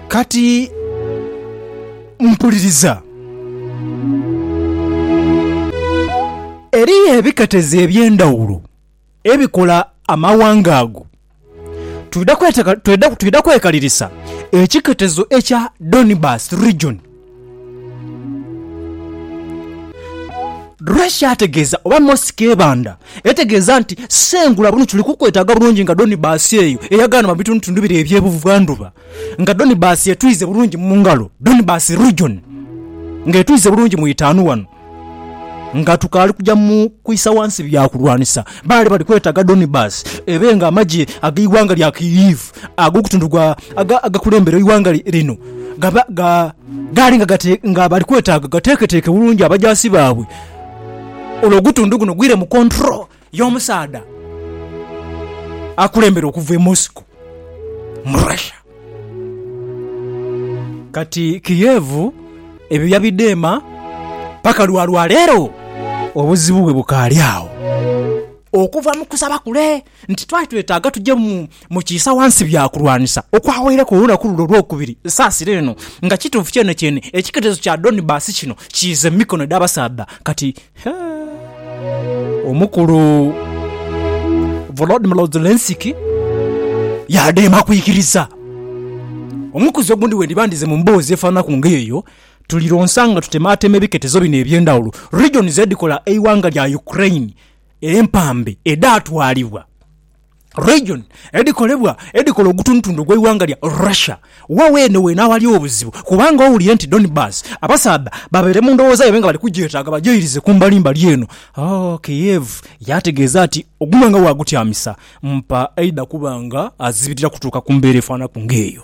Kati mpuliriza. Eriyo ebiketezi eby'endhawulo ebikola amawanga ago. Twidha kwekalirisa ekiketezo ekya Donbas Region. Russia ategeeza oba Moscow ebanda etegeeza nti sengula buno tuli kukwetaaga bulungi nga Donibus eyo eyagaana mu bitundutundu bire eby'ebuvandhuba nga Donibus etwize bulungi mu ngalo Donibus region nga etwize bulungi mu itaanu wano. Nga tukaali kuja mu kwisa ghansi bya kulwanisa, baali bali kwetaaga Donibasi ebe ng'amagye ag'eighanga lya Kyiv ag'ogutundu gwa agakulembera eighanga lino gaali nga bali kwetaaga gateeketeeke bulungi abajaasi baabwe olwo ogutundu guno gwire mu kontro. y'omusaadha akulembera okuva e Moscow, mu Russia. Kati Kiev ebyo yabidheema paka lwa lwaleero obuzibu bwe bukaali agho. Okuva mu kusaba kule nti twali twetaaga tuje mu kiisa wansi bya kulwanisa okwawaireku olunaku lule olwokubiri, nsaasira eno nga kituufu kyenekyeene ekiketezo kya Donbas kino kiize mu mikono edh'abasaadha kati. Omukulu Volodymyr Zelensky yaadema kwikiriza. Omukuzi ogundi wendiba ndize mu mboozi efaananaku nga eyo, tulironsa nga tutemaatema ebiketezo bino eby'endhawulo, regions, edhikola eighanga lya Ukraine empambe edhaatwalibwa. Region edhikolebwa edhikola ogutundutundu ogw'eighanga lya Russia wa weene weene aghali obuzibu kubanga owulire nti Donbas abasaadha babaire mu ndowooza yaibwe nga bali kugyetaaga bagyeirize ku mbalimbali eno, Kiev yaategeeza nti ogunwe nga waagutyamisa mpa aidha kuba nga azibirira kutuuka ku mbeera efaanaku ng'eyo.